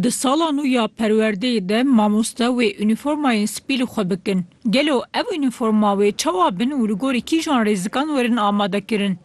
Di sala nû ya perwerdeyê de mamoste wê unîformayên spî li xwe bikin. Gelo ev unîforma wê çawa bin û li gorî kîjan rêzikan werin amadekirin?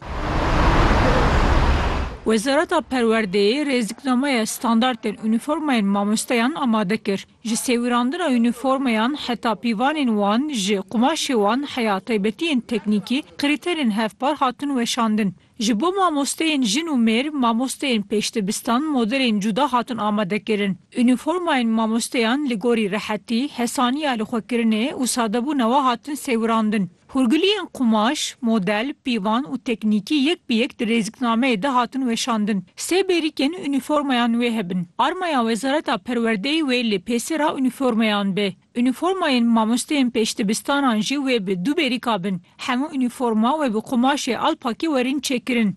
Wezareta Perwerdeyê rêziknameya standartên unîformayên mamosteyan amade kir. Ji sêwirandina unîformayan heta pîvanên wan, ji qumaşê wan heya taybetiyên teknîkî, krîterên hevpar hatin weşandin. Ji bo mamosteyên jin û mêr, mamosteyên pêşdibistan modelên cuda hatin amadekirin. Unîformayên mamosteyan li gorî rehetî, hesaniya lixwekirinê û sadebûna we hatin sêwirandin. Hûrgiliyên qumaş, model, pîvan û teknîkî yek bi yek di rêziknameyê de hatin weşandin. Sê bêrîkên unîformayan wê hebin. Armaya Wezareta Perwerdeyê wê lê pêsera unîformayan be. Unîformayên mamosteyên pêşdibistanan jî wê bi du bêrîka bin. Hemû unîforma wê bi qumaşê alpakî werin çêkirin.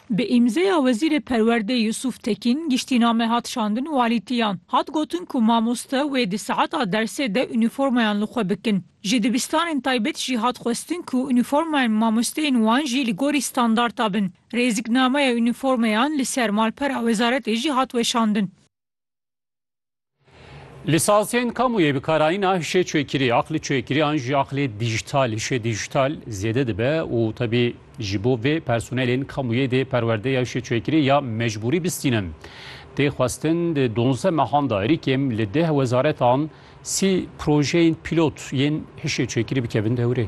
Bi îmzeya Wezîrê Perwerdê Yusuf Tekîn giştîname hat şandin walîtiyan. Hat gotin ku mamoste wê di saeta dersê de unîformayan li xwe bikin. Ji dibistanên taybet jî hat xwestin ku unîformayên mamosteyên wan jî li gorî standarta bin. Rêziknameya unîformayan li ser malpera wezaretê jî hat weşandin. Lisansiyên kamu yê bikarayîna hişê çêkirî, aqlê çêkirî an jî aqlê dîjîtal, hişê dîjîtal zêde dibe û tebî ji bo vê personelên kamu yê dê perwerde ya hişê çêkirî ya mecbûrî bistînin. Tê xwestin di donzdeh mehan de êrîkêm li deh wezaretan Sî projeyên pîlot yên hişê çêkirî bikevin dewrê.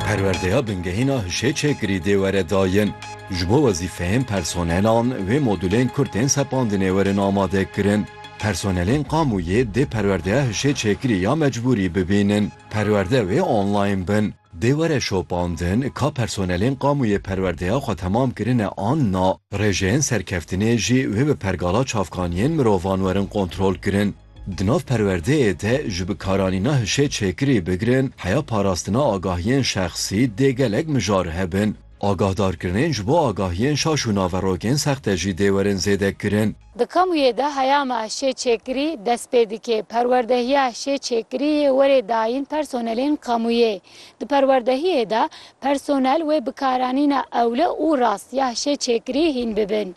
Perwerdeya bingehîna hişê çêkirî dê were dayin. Ji bo wezîfeyên personelan wê modûlên ku tên sepandinê werin amadekirin. Personelên qamûyê dê perwerdeya hişê çêkirî ya mecbûrî bibînin. Perwerde wê online bin. Dê were şopandin ka personelên Kamûyê perwerdeya xwe temam kirine an na, rêjeyên serkeftinê jî wê bi pergala çavkaniyên mirovan werin kontrolkirin. Di nav perwerdeyê de ji bikaranîna hişê çêkirî bigirin heya parastina agahiyên şexsî dê gelek mijar hebin. Agahdarkirinên ji bo agahiyên şaş û naverokên sexte jî dê werin zêdekirin. Di kamûyê de heya me şê çêkirî dest pê dike. Perwerdehiya şê çêkirî yê werê dayîn personelên kamûyê. Di perwerdehiyê de personel wê bikaranîna ewle û rast ya şê çêkirî hîn bibin.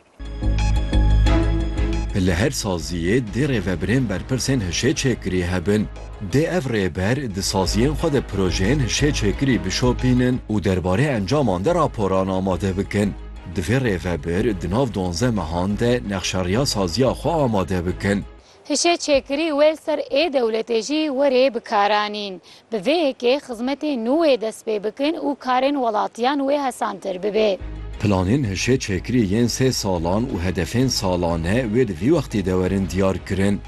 Li her saziyê dê rêvebirên berpirsên hişê çêkirî hebin. Dê ev rêber di saziyên xwe de projeyên hişê çêkirî bişopînin û derbarê encaman de raporan amade bikin. Di vê rêvebir di nav duanze mehan de nexşeriya saziya xwe amade bikin. Hişê çêkirî wê li ser ê dewletê jî werê bi kar anîn. Bi vê yekê xizmetên nû wê dest pê bikin û karên welatiyan wê hesantir bibe. Planên hişê çêkirî yên sê salan û hedefên salane wê di vî wextê de werin diyar kirin.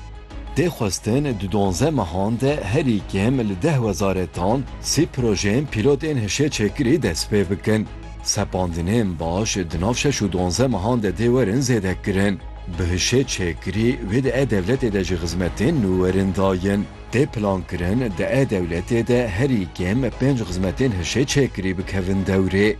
Tê xwestin di duanze mehan de herî kêm li deh wezaretan sî projeyên pîlot ên hişê çêkirî dest pê bikin. Sepandinên baş di nav şeş û duanzdeh mehan de dê werin zêdekirin. Bi hişê çêkirî wê di e-dewletê de jî xizmetên nû werin dayîn. Tê plankirin di e-dewletê de herî kêm pênc xizmetên hişê çêkirî bikevin dewrê.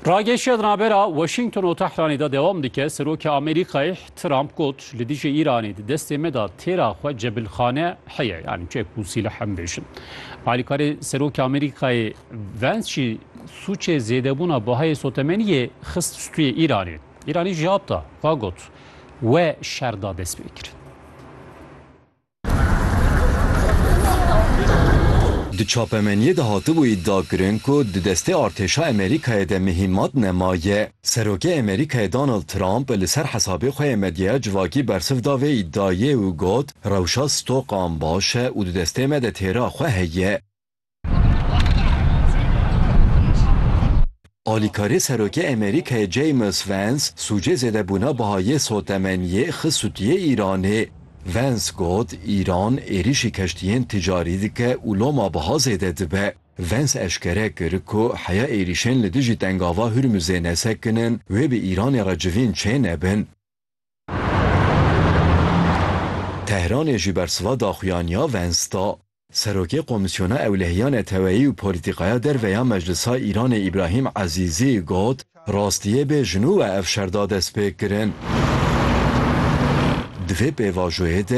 Ragêşiya di navbera Washington û Tehranê de dewam dike, Serokê Amerîkayê Trump got, Li dijî Îranê di destê me de têra xwe cebilxane heye, yanî çek û sîleh em bêjin. Alîkarê Serokê Amerîkayê Vance jî sûcê zêdebûna bahayê sotemeniyê xist stûyê Îranê. Îranî cewab da, xwe got, We şer da destpêkirin. Di çapemeniyê de hatibû îdia kirin ku di destê artêşa Amerîkayê de mihîmat nemaye. Serokê Amerîkayê Donald Trump li ser hesabê xwe yê medyaya civakî bersiv da vê îdiayê û got, Rewşa stokan baş e û di destê me de têra xwe heye. Alîkarê Serokê Amerîkayê James Vance sûcê zêdebûna biha yê sotemeniyê xist sûtiyê Îranê. Vance got, Îran êrîşî keştiyên ticarî dike û loma biha zêde dibe. Vance eşkere kir ku heya êrîşên li dijî Tengava Hurmuzê nesekin in wê bi Îranê re civîn çênebin. Tehranê jî bersiva daxuyaniya Vance da. Serokê Komîsyona Ewlehiya Neteweyî û Polîtîkaya Derve ya Meclisa Îranê Îbrahîm Ezîzî got, Rastiyê bê ji nû e ev şer da destpêkirin. Di vê pêvajoyê de,